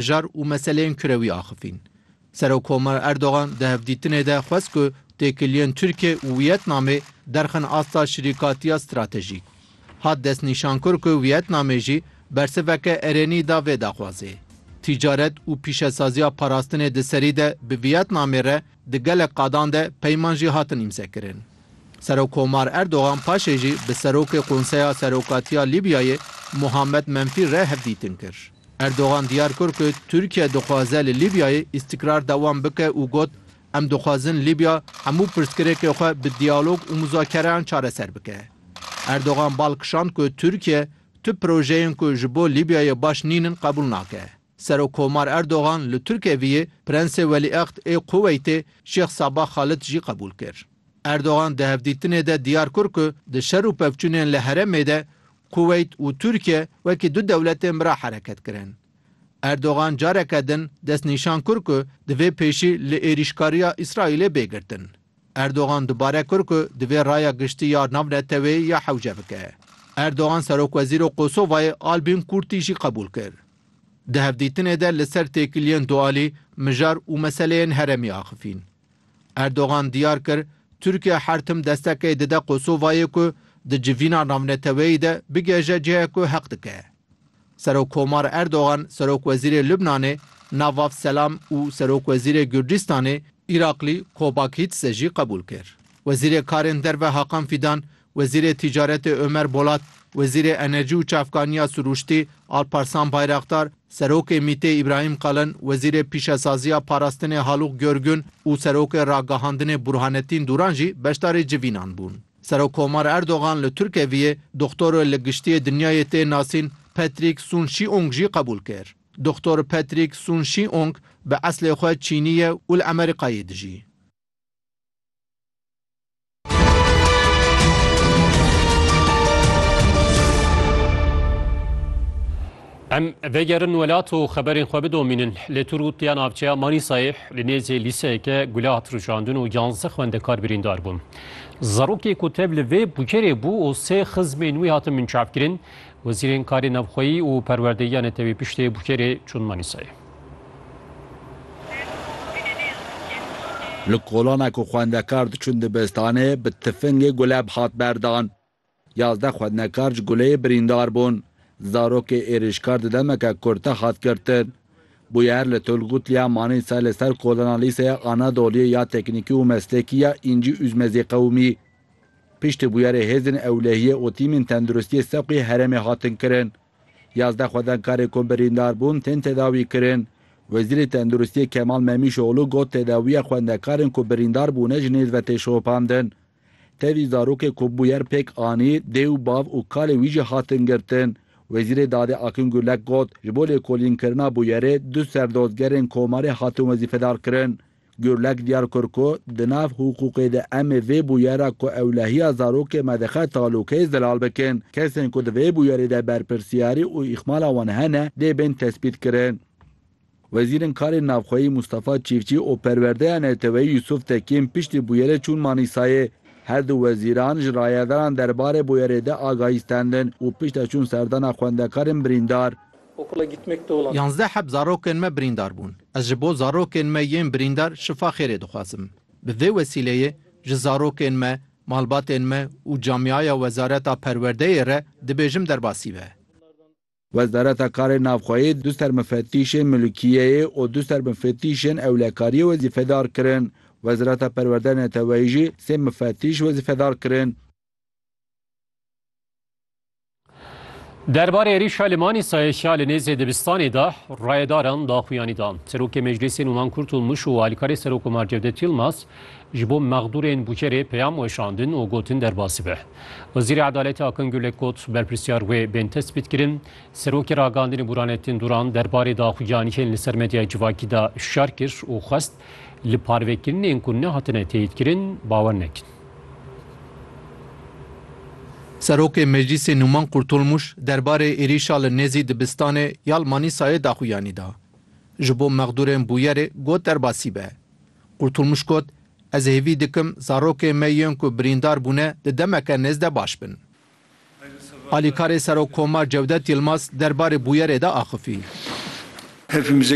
jar û meseleyên kurewî axifîn. Serokkomar Erdogan di hevdîtinê de xwest ku têkiliyên Tirkiye û Wiyetnamê derxin asta şirîkatiya stratejîk. Hat destnîşankir ku Wiyetnamê jî bersiveke erênî da vê daxwazê. Tîcaret û pîşesaziya parastinê di serî de bi Wiyetnamê re di gelek qadan de peyman jî hatin îmzekirin. Serokkomar Erdogan paşê jî bi Serokê Konseya Serokatiya Lîbyayê Muhammed Menfî re hevdîtin kir. Erdogan diyar kir ku Tirkiye dixwaze li Lîbyayê îstîkrar dewam bike û got, Em dixwazin Lîbya hemû pirsgirêkê xwe bi diyalog û muzakereyan çareser bike. Erdogan bal kişand ku Tirkiye tu projeyên ku ji bo Lîbyayê baş nîn in qebûl nake. Serokkomar Erdogan li Tirkeviyê Prensê Welîehd ê Kuweytê Şêx Sabah Xalid jî qebûl kir. Erdogan di hevdîtinê de diyar kir ku di şer û pevçûnên li herêmê de Kuweyt û Tirkiye wekî du dewletên bira hereket kirin. Erdogan careke din destnîşan kir ku divê pêşî li êrîşkariya Îsraîlê bê girtin. Erdogan dubare kir ku divê raya giştî ya navneteweyî ya hewce bike. Erdogan serokwezîro Kosovayê Albîn Kurtî jî qebûl kir. Di hevdîtinê de li ser têkiliyên dualî, mijar û meseleyên heremî axifîn. Erdogan diyar kir, Tirkiye her tim destekê dide Kosovayê ku di civîna navneteweyî de bigihêje cihê ku heq dike. Serokkomar Erdogan Serokwezîrê Lubnanê Navaf Selam û Serokwezîrê Gurcîstanê Îraklî Kobakhîtse jî qebûl kir. Wezîrê Karên Derve Hakan Fîdan Wezîrê Tîcaretê Ömer Bolat, Wezîrê Enerjî û Çavkaniya Sirûştî Alparslan Bayraktar, Serokê MĪT'ê Îbrahîm Kalin, Wezîrê Pîşesaziya Parastinê Halûk Görgün û Serokê Ragihandinê Burhanetîn Dûran jî beşdarî civînan bûn. Serokkomar Erdogan li Turkeviyê Doxtoro li Giştiyê Dinyayê tê nasîn Patrick Soon-Shiong jî qebûl kir. Doxtor Patrick Soon-Shiong bi eslê xwe Çînî ye û li Emerîkayê dijî. Em vegerin welat û xeberên xwe bidomînin lê tur û tiya navçeya Manîsayê li nêzê lîseyeke gula hat rûşandin û yanze xwendekar birîndar bûn. Zerokê ku tev li vê bukerê bû û sê xizmên wî hatin minçavkirin, wezîrên karê navxweyî û perwerdeyiya netewî piştê bukerê çûn Manîsayê. Li kolana ku xwendekar diçûn dibistanê bi tifingê guleb hat berdan. Yazdeh xwendekar ji guleyê birîndar bûn. Zarokê êrîşkar di demeke kurte hat girtin. Bûyer li Tulgut Liya Manîsa li ser kolana Lîseya Anadoliyê ya Teknîkî û Meslekî ya Încî Ûzmezî qewimî. Piştî bûyerê hêzên ewlehiyê û tîmên tenduristiyê seqûyê herêmê hatin kirin. Yazdeh xwedengkarê ku birîndar bûn tên tedawîkirin. Wezîrê Tenduristiyê Kemal Memîşoglû got tedawiya xwendekarên ku birîndar bûne ji nêz ve tê şopandin. Tevî zarokê ku bûyer pêk anî, dê û bav û kalê wî jî hatin girtin. Wezîrê Dadê Akîn Gurlek got ji bo lêkolînkirina bûyerê du serdozgerên Komarê hatin wezîfedarkirin. Gurlek diyar kir ku di nav hiqûqê de em ê vê bûyera ku ewlehiya zarokê me dixe talûkeyê zelal bikin. Kesên ku di vê bûyerê de berpirsiyarî û îhmala wan hene dê bên tespîtkirin. Wezîrên Karên Navxweyî Mûstafa Çîfçî û Perwerdeya Neteweyî Yûsûf Tekîn piştî bûyerê çûn Manîsayê. Her du wezîran ji rayedaran derbarê bûyerê de agahî stendin û piştre çûn serdana xwendekarên birîndar. Yanzdeh heb zarokên me birîndar bûn. Ez ji bo zarokên me yên birîndar şifa xêrê dixwazim. Bi vê wesîleyê ji zarokên me, malbatên me û camîaya Wezareta Perwerdeyê re dibêjim derbasî be. Wezareta Karên Navxweyê du sermifetîşên milûkiyeyê û du sermifetîşên ewlekariyê wezîfedar kirin. Wezareta Perwerdeyê Neteweyî jî sê mifetîş wezîfedar kirin. Derbarê êrîşa li Manîsayê ya li nêzê dibistanê de rayedaran daxuyanî da. Serokê Meclisê Nûman Kurt û Mûş û alîkarê Serokkomar Cevdet Yilmaz ji bo mexdûrên bûkerê peyam weşandin û gotin derbasî be. Wezîrê Edaletê Akin Gulek got berpirsiyar wê bên tespîtkirin. Serokê Ragandinê Bûranettin Duran derbarê daxuyaniyên li ser medyaya civakî de hişyar kir û xwest Li parvekirinên ku nehatine teyîdkirin bawer nekin. Serokê Meclîsê Nûman Qurtulmuş derbarê êrîşa li nêzî dibistanê ya li Manîsayê daxuyanî da. Ji bo mexdûrên bûyerê got derbasî be. Qurtulmuş got, Ez hêvî dikim zarokên me yên ku birîndar bûne di demeke nêz de baş bin. Alîkarê Serokkomar Cewdet Yilmaz derbarê bûyerê de axifî.